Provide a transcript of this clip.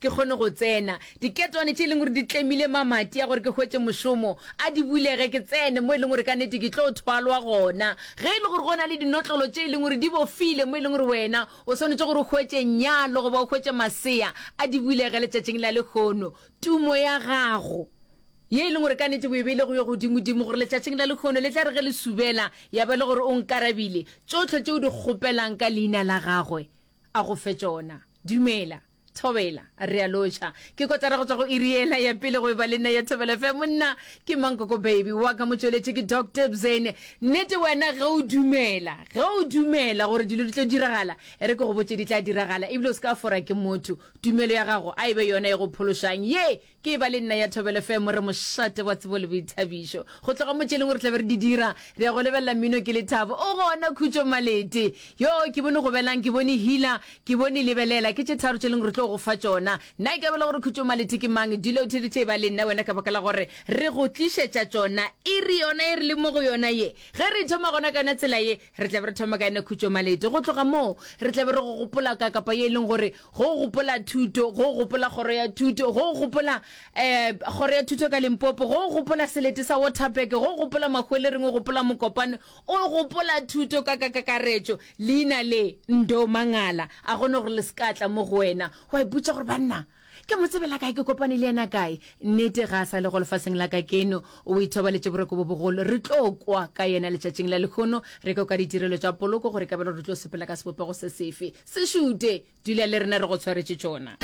ke kgone go tsena. Diketwane tše e leng gore di tlemile mamati a gore ke hwetše mošomo a di bulege ke tsene mo e leng gore ka nete ke tlo thwalwa gona. Ge e le gore go na le dinotlolo tše e leng gore di bofile mo e leng gore wena o swanetše gore o hwetše nyalo goba o hwetše masea, a di bulege letšatšing la lekgono. Tumo ya gago ye e leng gore ka nete o e beile go yo godimodimo gore letšatšing la lekgono le tla re ge le subela ya ba le gore o nkarabile tšohle tše o di kgopelang ka leina la gagwe a go fe tšona. Dumela. Thobela, re a lotšha. Ke kotara go tswa go iri ela ya pele go eba le nna ya Thobela FM. Nna ke Mankoko Baby, wa ka motšweletši ke Doc Dibzane. Nnete wena ge o dumela, ge o dumela gore dilo di tlo diragala, e re ke go botše di tla diragala, ebile o se ka fora ke motho. Tumelo ya gago a e be yona e go phološang, ye Ke eba le nna ya Thobelo FM, re mošate wa tsebo le boithabišo. Go tloga mo tšeleng gore tlabe re di dira, re ya go lebelela mmino ke lethabo. O gona Khutšo Malete. Yoo, ke bone Gobelang, ke bone Hila, ke bone Lebelela. Ke tše tharo tše leng re tlo go fa tšona. Nna ke abela gore Khutšo Malete ke mang. Dilo tše di tla eba le nna wena ka baka la gore re go tlišetša tšona iri yona e re leng mo go yona ye. Ge re thoma gona ka yona tsela ye, Re tla be re thoma ka yona khutšomalete. Go tloga moo, re tla be re go gopola ka kapa ye e leng gore go gopola thuto, go gopola kgoro ya thuto, go gopola um kgoro ya thuto ka Limpopo, go gopola selete sa Waterberg, go gopola mahwelereng, o gopola mokopane, o gopola thuto ka ka kakaretšo. Leina le, Ndo Mangala. A gone gore le se ka tla mo go wena, wa ipotša gore banna, Ke mo tsebela kae? Ke kopane le yena kae? Nnete, ga a sa le go lefaseng la kakeno. O ithobaletše boroko bo bogolo. Re tlo kwa ka yena letšatšing la lehono, re kwe ka ditirelo tša poloko gore kabelo re tlo sepela ka sebopego se sefe. Se šute! Dula le rena, re go tshwaretše tšona.